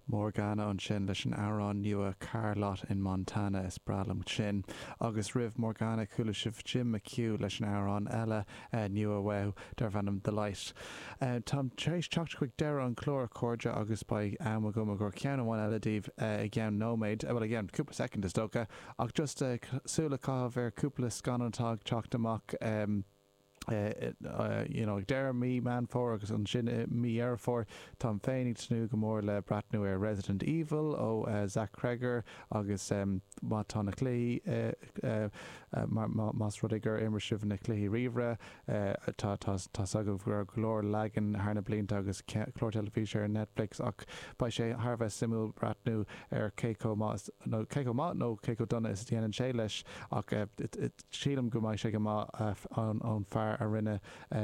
Morgana ansin leis an amhrán nua Car Lot in Montana, is breá liom sin. Agus roimh Morgana chuala sibh Jim McHugh leis an amhrán eile nua uaidh darbh ainm The Light. Táim tar éis teacht chuig deireadh an clár a chairde agus beidh am agam chun ceann amháin eile daoibh i gceann nóiméad, bhuel i gceann cúpla soicind is dócha ach just súil a chaitheamh ar chúpla scannán atá ag teacht amach. you know, ag deireadh mí Meán Fómhair agus ansin i mí Dheireadh Fómhair. Táim féin ag tnúth go mór le breathnú ar Resident Evil ó Zach Cregger agus má tá na cluichí, mar más rud é gur imir sibh na cluichí ríomhaire, tá, tá, tá's agaibh go raibh go leor leagan thar na blianta agus clár teilifíse ar Netflix ach beidh sé thar a bheith suimiúil breathnú ar cé chomh maith is, nó cé chomh maith nó cé chomh dona is a dhéanann sé leis ach Sílim go mbeidh sé go maith ón fear a rinne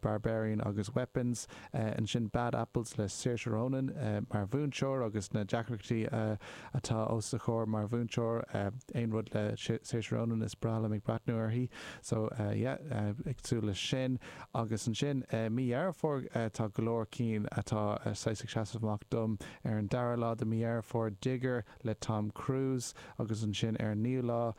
Barbarian agus Weapons, ansin Bad Apples le Saoirse Ronan mar mhúinteoir agus na deacrachtaí atá os a comhair mar mhúinteoir, aon rud le Saoirse Ronan is breá liom ag breathnú uirthi, so yeah ag súil leis sin. Agus ansin mí Dheireadh Fómhair tá go leor cinn atá saghas ag seasamh amach dom, ar an dara lá de mí Dheireadh Fómhair Digger le Tom Cruise agus ansin ar an naoú lá,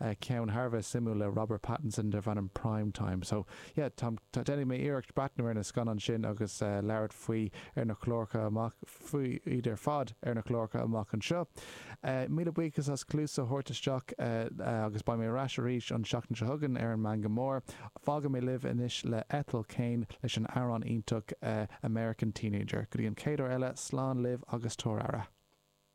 ceann thar a bheith suimiúil le Robert Pattinson darb ainm Prime Time. So, yeah, táim, tá, déanfaidh mé iarracht breatnú ar na scannáin sin agus labhairt faoi ar na cláracha amach, faoi iad ar fad ar na cláracha amach anseo. Míle buíochas as cluas a thabhairt isteach agus beidh mé ar ais arís an tseachtain seo chugainn ar an Meangadh Mór. Fágfaidh mé libh anois le Ethel Cain leis an amhrán iontach American Teenager. Go dtí an chéad uair eile, slán libh agus tabhair aire.